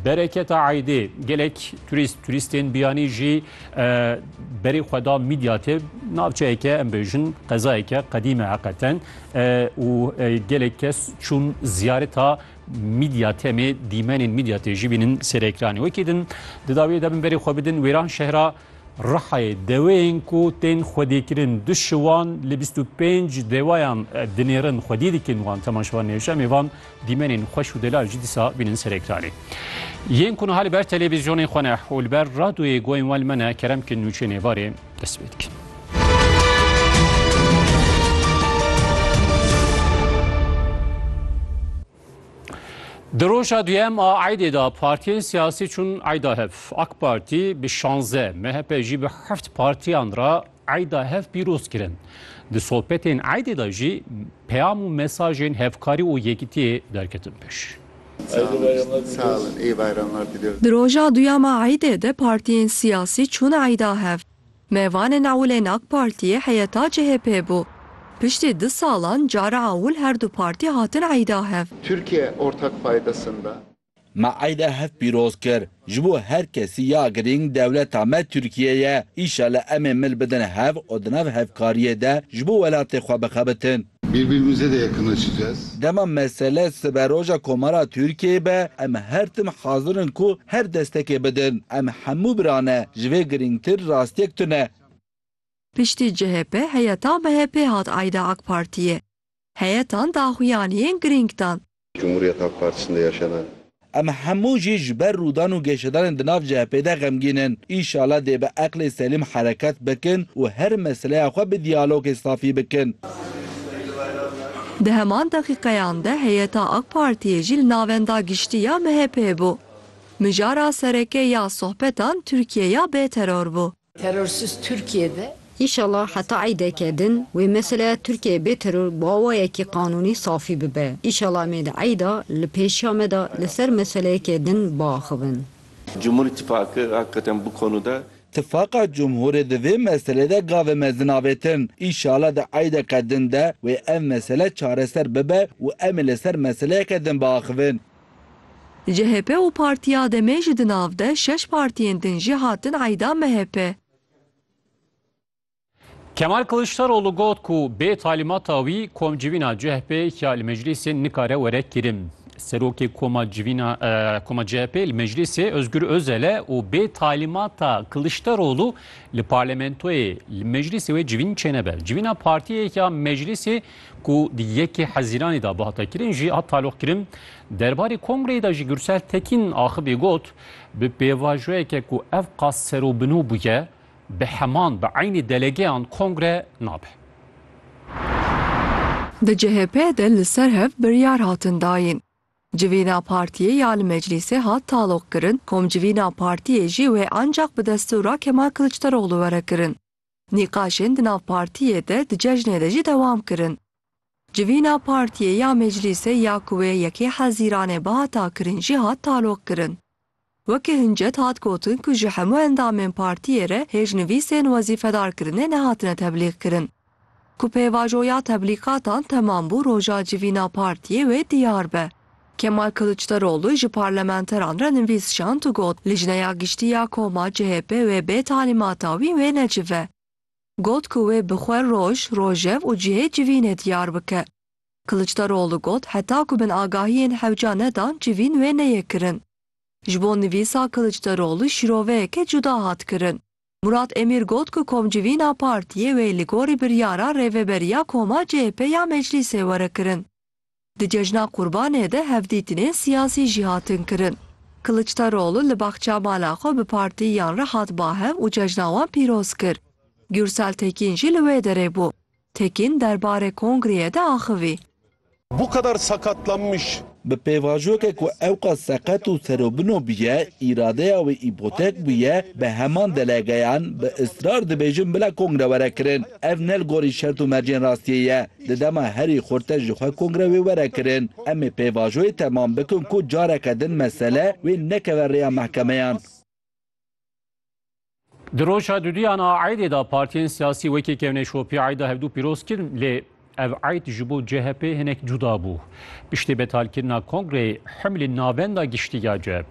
Bereketa Eydê gelek turîst turîstên biyanî jî berê xwe da Mîdyatê navçeyeke em bêjin qezayeke qedîme heqeten û gelek kes çûn ziyareta Mîdyatemê dîmenên Mîdyatê jî bînin serekranê wekî din di dawiyê de bin berê xwe bidin wêran şehra Rihayê deweyên ku tên xwedîkirin du şiwan li bîst û pênc dewayan dinêrin xwedî dikin wan tema şivan nêşemê van dîmenên xweş û delal jî dîsa bînin ser ekranê. Yên ku niha li ber televîzyonên xwe ne û li ber radyoyê guhên wan li me ne kerem bikin nûçeyên êvarê dest pê dikin. Di roja duyem a eydê de partiyên siyasî çûn eyda hev. AK Partî bi şanze, MHP jî bi heft partiyan re eyda hev pîroz kirin. Di sohbetên eydê de jî peyam û mesajên hevkarî û yekitiyê derketin pêş. Di roja duyem a eydê de partiyên siyasî çûn eyda hev. Mevan ên ewilên AK Partiyê heyeta CHP'ê bû. Piştî du salan cara ewil her du partî hatin eyda hev. Türkiye ortak paydasında. Me eyda hev pîroz kir. Ji bo her kesî ya girîng dewleta me Türkiye ye. Îşallah em ê mil bidin hev û di nav hevkariyê de ji bo welatê xwe bixebitin. Birbirimize de yakınlaşacağız. Dema mesele siberoja Komara Tirkiyeyê be, em her tim hazir in ku her destekê bidin. Em hemû bira ne. Ji vê girîngtir rastiyek tune. Piştî CHP heyeta MHP'ê hat eyda Akpartiyê. Heyetan daxuyaniyên girîng dan. Cumhuriyet Halk Partisi'nde yaşanan. Em hemû jî ji ber rûdan û geşedanên di nav CHP'ê de xemgîn in. Îşala dê bi eqlê selîm hereket bikin û her meseleya xwe bi diyalogê safî bikin. Di heman deqîqeyan de heyeta AK Partiyê jî li navenda giştî ya MHP'ê bû. Mijara sereke ya sohbetan Tirkiye ya bêteror bû. Terorsiz Tirkiye de. Înşallah heta eydeke din wê meseleya Tirkiyeyê bê teror bi awayekî qanûnî safî bibe. Înşallah em ê di eyda li pêşiya me de li ser meseleyekê din biaxivin. Cumhur Îtîfaqi hakikaten bu konuda. Tifaqa Cumhurê di vê meselê de gavê mezin avêtin. Înşallah di eydeke din de wê ev mesele çareser bibe û em ê li ser meseleyeke din biaxivin. CHP û Partiya DEM'ê ji di nav de şeş partiyên din jî hatin eyda MHP. Kemal Kiliçdaroglu got ku bê talîmata wî komcivîna CHP'ê ya li meclîsê nikare were kirin. Serokê koma civîna koma CHP'ê li meclîsê Ozgur Ozel e û bê talîmata Kiliçdaroglu li parlamentoyê li meclîsê wê civîn çênebe. Civîna partiyê ya meclîsê ku di yekê Hezîranê de bihate kirin jî hat taloqkirin. Derbarê kongreyê de jî Gursel Tekîn axivî got, bi pêvajoyeke ku ev qas serobino bûye, bi heman bi eynî delegeyan kongre nabe. Di CHP'ê de li ser hev biryar hatin dayîn. Civîna partiyê ya li meclîsê hat taloqkirin, komcivîna partiyê jî wê ancaq bi destûra Kemal Kiliçdaroglu were kirin. Nîqaşên di nav partiyê de di cejnê de jî dewam kirin. Civîna partiyê ya meclîsê ya ku wê yekê hezîranê bihata kirin jî hat taloqkirin. Weke hincet hat gotin ku ji hemû endamên partiyê re hêjnivîsên wezîfedarkirinê nehatine teblîqkirin. Ku pêvajoya teblîqatan temam bû roja civîna partiyê wê diyar be. Kemal Kiliçdaroglu ji parlamenteran re nivîs şand û got, Lijneya Giştî ya koma CHP wê bê talîmata wî wê necive. Got ku wê bi xwe roj, rojev û cihê civînê diyar bike. Kiliçdaroglu got, Heta ku binagahiyên hewca nedan civîn wê neyê kirin. Ji bo nivîsa Kiliçdaroglu şîroveyeke cuda hat kirin. Murat Emîr got ku komcivîna partiyê wê li gorî biryara Rêveberiya Koma CHP ya Meclîsê were kirin. Di cejna Qurbanê de hevdîtinên siyasî jî hatin kirin. Kiliçdaroglu li baxça mala xwe bi partiyiyan re hat bahev û cejna wan pîroz kir. Gûrsel Tekîn jî li wê derê bû. Tekin derbarê kongreyê de axivî. Bu kadar sakatlanmış. Bi pêvajoyeke ku ewqas seqet û serobino bûye, îradeya wê îpotek bûye, bi heman delegeyan bi israr dibêjin bila kongre were kirin. Ev ne li gorî şert û mercên rastiyê ye. Di dema herî xurte ji xwe kongre wê were kirin. Em ê pêvajoyê temam bikin ku careke din mesele wê nekeve rêya mehkemeyan. Di roja duduyan a eydê de partiyên siyasî wekî kevnê şopî eyda hevdû pîroz kirin lê ev eyd ji bo CHP hinek cuda bû. Piştî betalkirina kongreyê himlî navenda giştî ya CHP